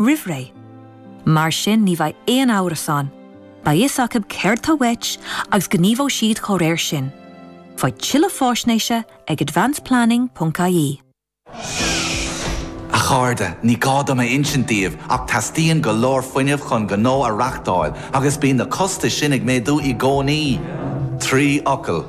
roimhré. Mar sin ní bheidh aon amhras ann, beidh fhios acu céard tá uait agus gníomhóidh siad dá réir sin. Faigh tuilleadh faisnéise ag advanceplanning.ie. A chairde, ní gá dom a insint daoibh ach teastaíonn go leor fuinnimh chun gnó a reachtáil agus bíonn na costais sin ag méadú i gcónaí. Trí fhocal.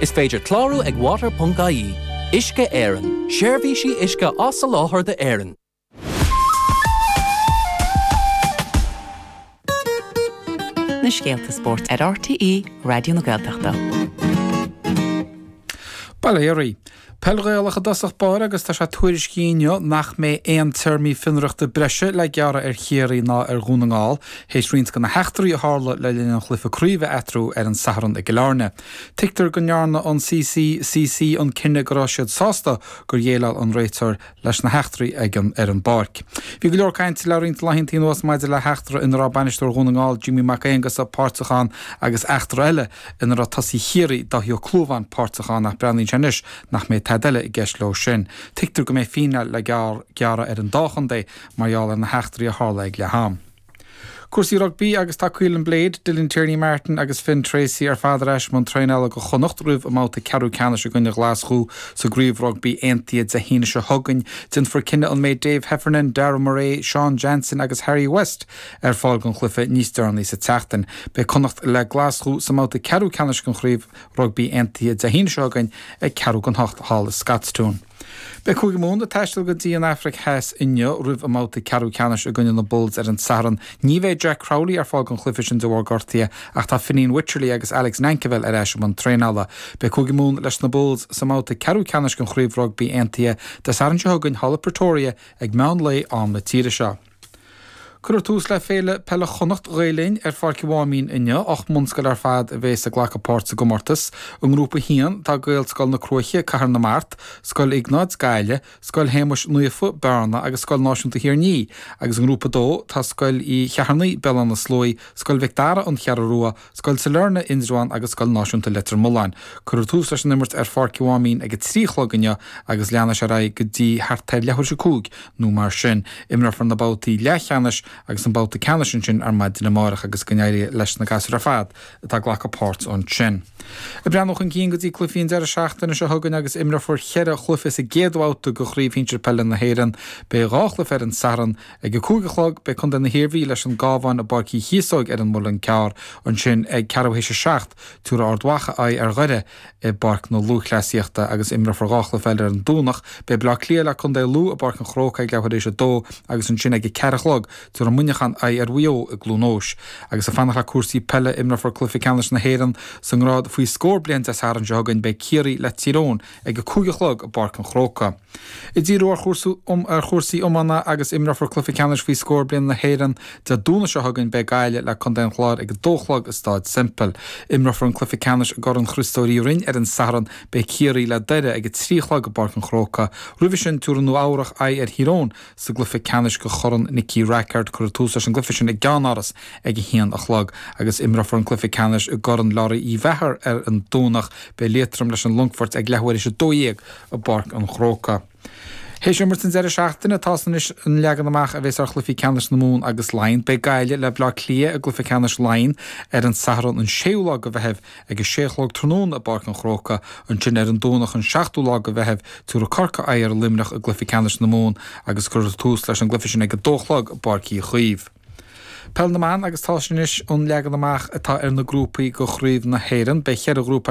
Is féidir clárú ag Water.ie, Uisce Éireann, seirbhísí uisce á soláthar d'Éirinn. Na scéalta spóirt ar RTÉ Raidió na Gaeltachta. Bail ó Dhia oraibh. Peil Ghaelach i dtosach báire agus tá sé tuairiscithe inniu nach mbeidh aon téarmaí fionraíochta breise le gearradh ar Chiarraí ná ar Dhún na nGall théis roinnt de na heachtraí a tharla le linn an chluife craoibhe eatarthu ar an Satharn i gCill Airne. Tuigtear go ndearna an CCCC an cinneadh go raibh siad sásta gur dhéileáil an réiteoir leis na heachtraí ag an ar an bpáirc. Bhí go leor cainte le roinnt laethanta anuas maidir le heachtra ina raibh bainisteoir Dhún na nGall, Jimmy Mac Aongusa, páirteach ann agus eachtra eile ina raibh tosaí Chiarraí, Dáithí Ó Clúmháin, páirteach ann ach breathnaíonn sé anois nach mbeidh tada eile i gceist leo sin. Tuigtear go mbeidh fíneáil le gearradh ar an dá chontae mar gheall ar na heachtraí a tharla ag leath-am. Cúrsaí rugbaí agus tá Caolin Blade, Dylan Tierney-Martin agus Finn Treacy ar fad ar ais i mbun traenála do Chonnacht roimh a mbabhta ceathrú ceannais i gcoinne Ghlaschú sa gCraobh Rugbaí Aontaithe Dé hAoine seo chugainn. Déanfar cinneadh an mbeidh Dave Heffernan, Darragh Murray, Sean Jansen agus Harry West ar fáil don chluiche níos deireanaí sa tseachtain. Beidh Connacht le Glaschú sa mbabhta ceathrú ceannais den Chraobh Rugbaí Aontaithe Dé hAoine seo chugainn ag ceathrú don hocht thall i Scotstoun. Beidh Cúige Mumhan ag taisteal go dtí an Afraic Theas inniu roimh a mbabhta ceathrú ceannais i gcoinne na Bulls ar an Satharn. Ní bheidh Jack Crowley ar fáil don chluiche sin de bharr gortaithe ach tá Fineen Wycherley agus Alex Nankivell ar ais i mbun traenála. Beidh Cúige Mumhan leis na Bulls sa mbabhta ceathrú ceannais den Chraobh Rugbaí Aontaithe Dé Sathairn seo chugainn thall i Pretoria ag meán lae am na tíre seo. Cuireadh tús le Féile Peile Chonnacht, Ghael Linn, ar Pháirc an Mháimín inniu. Ocht mbunscoil ar fad a bhéas ag glacadh páirt sa gcomórtas. I nGrúpa 1, tá Gaelscoil na Cruaiche, Cathair na Mart, Scoil Iognáid, Gaillimh, Scoil Shéamais Naofa, Bearna agus Scoil Náisiúnta Thír an Fhia, agus i nGrúpa 2, tá Scoil Uí Cheithearnaigh, Béal Átha na Sluaighe, Scoil Mhic Dara, An Cheathrú Rua, Scoil Sailearna, Indreabhán agus Scoil Náisiúnta Leitir Mealláin. Cuireadh tús leis an imirt ar Pháirc an Mháimín ag a trí a chlog inniu agus leanfaidh sé ar aghaidh go dtí thart ar leathuair théis a cúig nó mar sin. Imreofar na babhtaí leathcheannais agus an babhta ceannais ansin ar maidin amárach agus go n-éirí leis na gasúir ar fad atá ag glacadh páirt ansin. Ag breathnú chun cinn go dtí cluichí an deireadh seachtaine seo chugainn agus imreofar cheithre chluiche sa gcéad bhabhta de Chraobh Shinsir Peile na hÉireann. Beidh dhá chluiche ar an Satharn Ag a cúig a chlog, beidh Contae na hIarmhí leis an gCabhán i bPáirc Uí Chíosóg ar an Muileann gCearr, ansin ag ceathrú théis a seacht, tabharfaidh Ard Mhacha aghaidh ar Dhoire i bPáirc na Lúthchleasaíochta agus imreofar dhá chluiche eile ar an Domhnach. Beidh Baile Átha Cliath le contae Lú i bPáirc an Chrócaigh ag leathuair théis a dó agus ansin ag a ceathair a chlog, tabharfaidh Muineachán aghaidh ar Mhaigh Eo i gCluain Eois. Agus ag fanacht le cúrsaí peile, imreofar cluiche ceannais na hÉireann sa ngrád faoi scór bliain Dé Sathairn seo chugainn, beidh Ciarraí le Tír Eoghain ag a cúig a chlog i bPáirc an Chróca. Díriú ar chúrsaí iomána agus imreofar cluiche ceannais faoi scór bliain na hÉireann Dé Domhnaigh seo chugainn. Beidh Gaillimh le contae an Chláir ag a dó a chlog i Stáid Semple. Imreofar an cluiche ceannais i gCorn Chriostóir Uí Rinn ar an Satharn. Beidh Ciarraí le Doire ag a trí a chlog i bPáirc an Chrócaigh. Roimhe sin tiúrfaidh Nua Eabhrach aghaidh ar Thír Eoghain sa gcluiche ceannais go Chorn Nicky Rackard. Cuirfear tús leis an gcluife sin i gCeannáras ag a haon a chlog agus imreofar an cluife ceannais i gCorn Lory Uí Mheachair ar an Domhnach. Beidh Liatroim leis an Longfort ag leathuair théis a dó dhéag. i bPáirc an Chrócaigh. Théis imirt an deireadh seachtaine tá a fhios anois an leagan amach a bheas ar chluichí ceannais na Mumhan agus Laighean. Beidh Gaillimh le Bleá Cliath i gcluiche ceannais Laighean ar an Satharn an 6ú lá go Mheitheamh ag a sé a chlog tráthnóna i bPáirc an Chrócaigh. Ansin ar an Domhnach an 7ú lá go Mheitheamh tiúrfaidh Corcaigh aghaidh ar Luimneach i gcluiche ceannais na Mumhan agus cuirfear tús leis an gcluiche sin ag a dó a chlog i bPáirc Uí Chaoimh. Peil na mBan agus tá a fhios anois an leagan amach atá ar na grúpaí go Chraobh na hÉireann. Beidh cheithre ghrúpa.